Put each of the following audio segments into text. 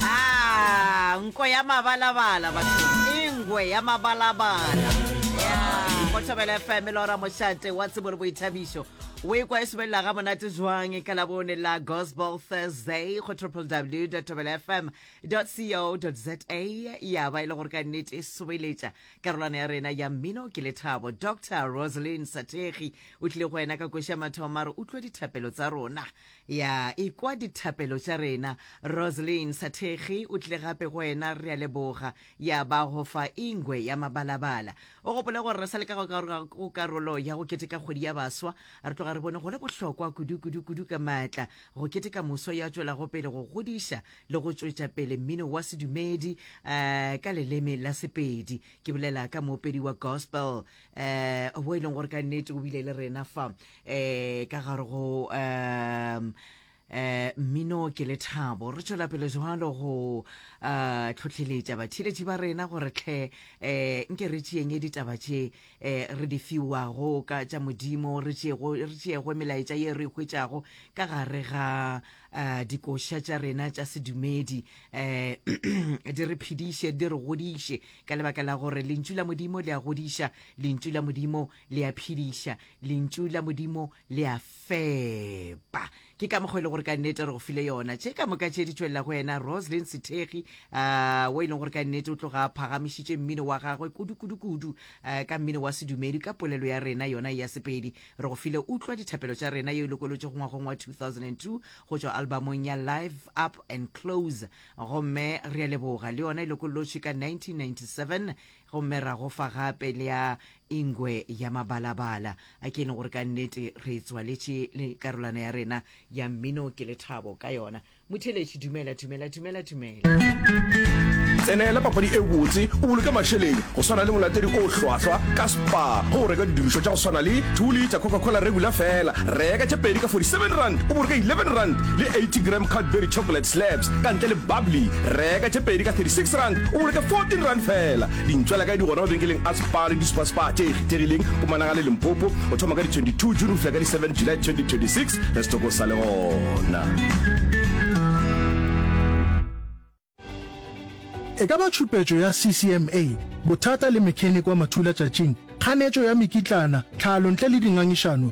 Ah, nko ya mabalabala batho e ngwe ya mabalabala go thobela fm le ora mošate wa tsebo le boithabišo o ekwa e somelela ga monate jwang ka labone la gospel thursday go www thobela fm co za ya ba e le gore ka nnete e someletša karolwana ya rena ya mmino ke lethabo dr rosalyn sategi o tlile go wena ka koša mathomo a re utlwe dithapelo tsa rona Ya ikwa dithapelo tša rena. Roseline Sathekgi o tlile gape go wena, re a leboga. Ya ba go fa ingwe ya mabalabala. O gopole gore re sa le ka go karolo ya go keteka kgwedi ya baswa, re tloga re bone go le bohlokwa kudu, kudu, kudu ka maatla go keteka moswa yo a tšwelago pele go godiša le go tšwetša pele mmino wa sedumedi ka leleme la Sepedi, ke bolela ka moopedi wa gospel. eh wo e leng gore ka nnete o bile le rena fa eh ka gare go um eh mmino ke lethabo re tšwela pele jwalo go uh tlhotlheletša batheletši ba rena gore tlhe eh nke re tšeeng e ditaba tše eh re di fiwago ka tša modimo re tšeego re tšeego melaetša ye re hwetšago ka gare ga uh dikoša tša rena tša sedumedi eh di re phediše di re godiše Ka lebaka la gore Lentšu la Modimo le a godiša, Lentšu la Modimo le a phediša, Lentšu la Modimo le a fepa. Ke ka mokgwa e le gore ka nnete re go file yona. Tše ka moka tše di tšwelela go wena, Roslyn Sethegi, uh, wo e leng gore ka nnete o tloga a phagamišitše mmino wa gagwe kudu-kudu-kudu uh, ka mmino wa sedumedi ka polelo ya rena yona ya Sepedi. Re go file utlwa dithapelo tša rena yeo e lokolotšego ngwagong wa 2002 go tšwa albamong ya Live Up and Close Gomme re a leboga, le yona e lokollotšwe ka 1997, gomme ra go fa gape le ya Ingwe ya Mabalabala. A ke e leng gore ka nnete re e tswaletše le karolwana ya rena ya mmino ke lethabo ka yona? Motheeletši, Dumela, dumela, dumela, dumela. Tsenela papadi e botse o boloke mašeleng go swana le molatedi o hlwahlwa ka Spar go reka didirišwa tša go swana le 2 liter Coca-Cola regular fela. Reka tše pedi ka 47 rand o boloke 11 rand le 80 gram Cadbury chocolate Slabs ka ntle le bubbly. Reka tše pedi ka 36 rand o boloke 14 rand feela. Dintšwela kae di gona mabenkeleng a Spar le di-Superspar tše ikgethegileng go Managale, Limpopo go thoma ka di 22 June go fihla ka di 7 July 2026. Re setoko sa le gona. E ka ba tšhupetšo ya CCMA, bothata le mechanic wa mathulatšatšing, kganetšo ya mekitlana, tlhalo ntle le dingangišano,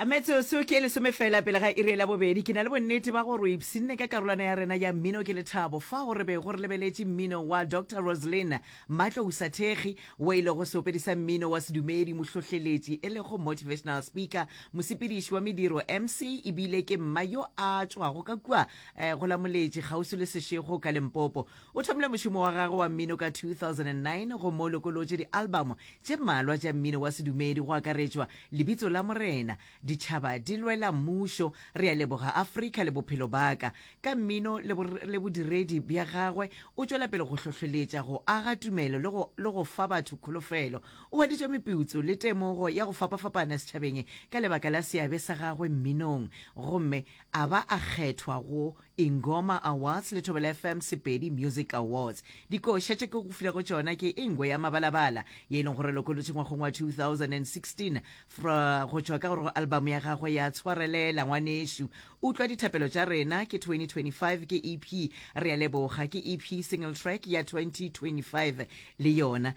A Metsotso ke e lesome feela pele ga iri ya labobedi. Ke na le bonnete ba gore o ipshinne ka karolwana ya rena ya mmino ke lethabo fao re bego re lebeletše mmino wa Doctor Roslyn Matlousa Thekgi, wo e lego seopedi sa mmino wa sedumedi, mohlohleletši e lego motivational speaker, mosepediši wa mediro, MC, e bile ke mma yo a tšwago ka kua eh, go la Moletši kgauswi le Seshego ka Limpopo. O thomile mošomo wa gagwe wa mmino ka 2009 gomme o lokolotše dialbamo tše mmalwa tša mmino wa sedumedi go akaretšwa Lebitso la Morena, ditšhaba di lwela mmušo, re a leboga Afrika le bophelo baka. Ka mmino le, le bodiredi bja gagwe, o tšwela pele go hlohleletša, go aga tumelo le go, le go fa batho kholofelo. O hweditše meputso le temogo ya go fapafapana setšhabeng ka lebaka la seabe sa gagwe mminong, gomme a ba a kgethwa go Ingoma Awards le Thobela FM Sepedi Music Awards. Dikoša tše ke go filego tšona ke Ingwe ya Mabalabala ye e leng gore lokolotše ngwagong wa 2016 go tšwa ka gore go album ya gagwe ya Tshwarelela Ngwanešu. Utlwa Dithapelo Tša Rena ke 2025 ke EP Re a Leboga ke EP single track ya 2025 le yona.